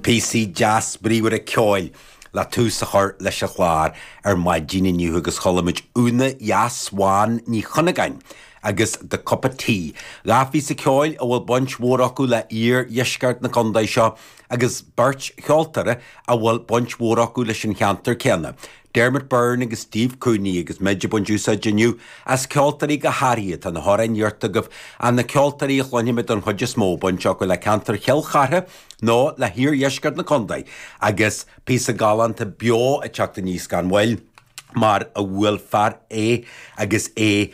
Píosaí deas bríomhara ceoil le tús a chur leis an gclár ar maidín inniu agus chuala muid Úna dheas bhán Ní Chuinneagáin agus The Cup of Tea, dhá phíosa ceoil a bhfuil baint mhór acu le iardheisceart na condae seo agus beirt cheoltóir a bhfuil baint mhór acu leis an cheantar céanna, Dermot Byrne agus Steve Cooney agus muid ag baint úsáid inniu as ceoltóirí go háirithe atá na hamhráin iarrtha agaibh ach na ceoltóirí a chluinfimid don chuid is mó baint acu le ceantar Chill Chartha nó le hiardheisceart na contae agus píosa galánta beo ag teacht aníos gan mhoill mar a bhuail fear é agus é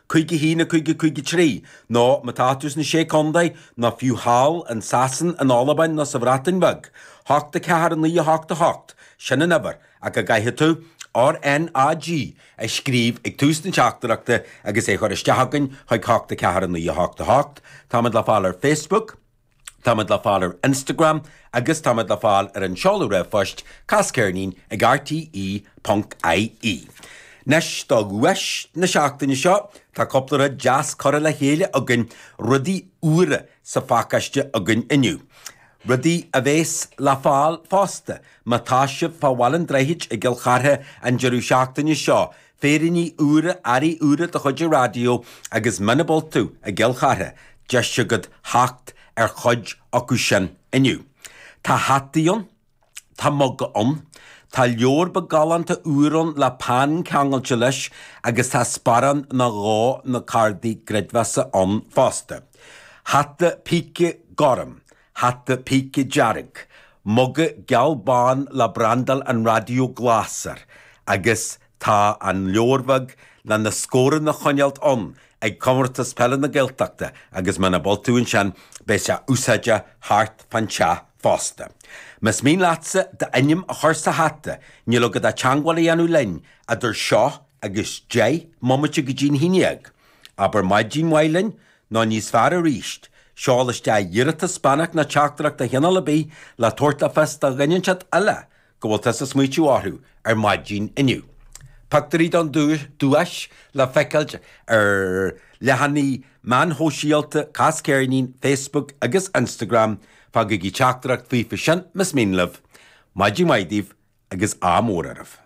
Cúig a haon a cúig a cúig a trí, nó má tá tú sna Sé Contae, nó fiú thall in Sasain, in Albain nó sa Bhreatain Bheag, hocht a ceathair a naoi a hocht a hocht, sin an uimhir ach go gcaithfidh tú RNAG a scríobh ag tús na teachtaireachta agus é a chur isteach againn chuig hocht a ceathair a naoi a hocht a hocht. Táimid le fáil ar Facebook. Táimid le fáil ar Instagram agus táimid le fáil ar an seoladh r-phoist casceirnín ag rte ponc ie. Anois do dhuais na seachtaine seo, tá cúpla rud deas curtha le chéile againn, rudaí úra sa phacáiste againn inniu. Rudaí a bhéas le fáil fosta má tá sibh fá Bhaile an Droichid i gCill Chartha an deireadh seachtaine seo, féiríní úra, earraí úra de chuid an raidió agus muna bhfuil tú i gCill Chartha, deis agat theacht ar chuid acu sin inniu. Tá hataí ann, tá muga ann, tá leabhar beag galánta úr ann le peann ceangailte leis agus tá sparán nó dhó na cardaí creidmheasa ann fosta. Hata píce gorm. hata píce dearg, muga geal bán le brandáil an raidió glas air, agus tá an leabhar bheag le na scóranna a choinneáilt ann ag Comórtas Peile na Gaeltachta agus muna bhfuil tú ansin beidh sé úsáideach thart fán teach fosta. Más mian leatsa d'ainm a chur sa hata níl agat ach teagmháil a dhéanamh linn idir seo agus deich mbomaite go dtí'n haon dhéag, abair maidin mhaith linn, Nó níos fearr arís, seol isteach iarratas beannacht nó teachtaireacht de chineál ar bith le tabhairt le fios do dhuine inteacht eile go bhfuil tusa ag smaoitiú orthu ar maidin inniu. Pictiúirí don duais le feiceáil ar leathanaigh meáin shóisialta Cas Ceirnín, Facebook agus Instagram, fágaigí teachtaireacht faofa sin más mian libh. Maidin mhaith daoibh agus ádh mór oraibh.